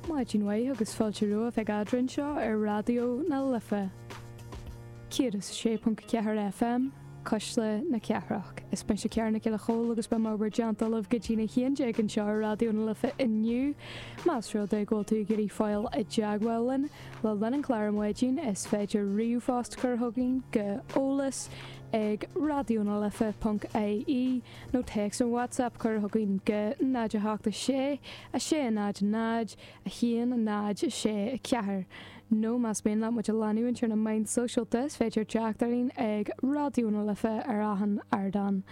Maidin mhaith agus fáilte romhaibh ag Eadra anseo ar Raidió na Life 106.4 FM, Cuisle na Cathrach. Is mise Cara Nic Giolla Chomhaill agus beidh mé in bhur dteannta libh go dtí'n 11 anseo ar Raidió na Life inniu. Más rud é go bhfuil tú ag iarraidh fáil i dteagmháil linn le linn an chláir ar maidin is féidir ríomhphost a chur chugainn go eolas ag raidionalife.ie. nó téacs nó WhatsApp a chur chugainn go 0 8 6 6 0 0 1 0 6 4 nó más mian leat muid a leanúint ar na meáin sóisialta is féidir teacht orainn ag Raidió na Life ar achan ardán.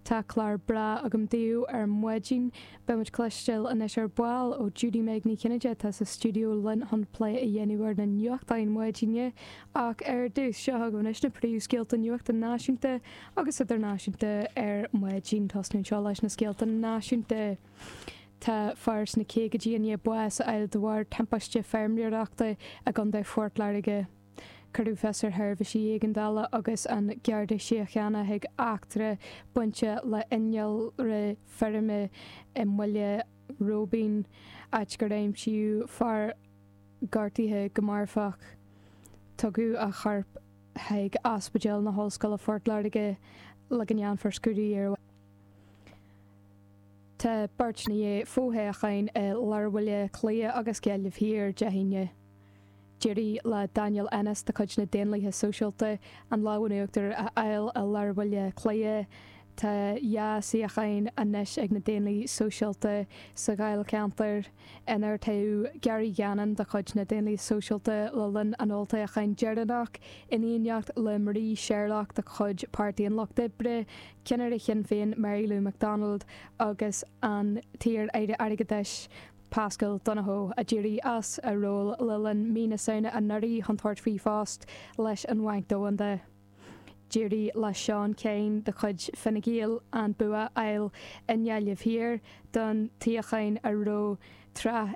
Tá clár breá agam daoibh ar maidin. Beidh muid ag cloisteáil anois ar ball ó Judy-Meg Ní Chinnéide atá sa stiúideo linn chun plé a dhéanamh ar na nuachtáin maidine ach ar dtús, seo chugaibh anois na príomhscéalta nuachta náisiúnta agus idirnáisiúnta ar maidin. Ag tosnú anseo leis na scéalta náisiúnta. Tá fear sna caogaidí i ndiaidh bás a fháil de bharr timpiste feirmeoireachta i gContae Phort Láirge. Cuireadh fios ar sheirbhísí éigeandála agus an Garda Síochána chuig eachtra bainteach le innealra feirme i mBaile Róibín, áit gur aimsíodh fear gortaithe go marfach. Tugadh a chorp. chuig Ospidéal na hOllscoile Phort Láirge le go ndéanfar scrúdú air. Tá beirt i ndiaidh fo-thoghcháin i lár Bhaile Átha Cliath agus Gaillimh Thiar Dé hAoine. D'éirigh le Daniel Ennis de chuid na Daonlathaithe Sóisialta an lámh in uachtar a fháil i lár Bhaile Átha Cliath. Tá dhá shuíochán anois ag na Daonlathaithe Sóisialta sa Dháilcheantar. inar toghadh Gary Gannon de chuid na Daonlathaithe Sóisialta le linn an olltoghcháin dheireanach, in éineacht le Marie Sherlock de chuid Pháirtí an Lucht Oibre, ceannaire Shinn Féin Mary Lou McDonald agus an t-iar-aire airgeadais Paschal Donohoe, a d'éirigh as a ról le linn mhí na Samhna anuraidh chun tabhairt faoi phost leis an Bhanc Domhanda. D'éirigh le Seán Kyne de chuid Fine Gael an bua a fháil i nGaillimh Thiar don tsuíochán a raibh tráth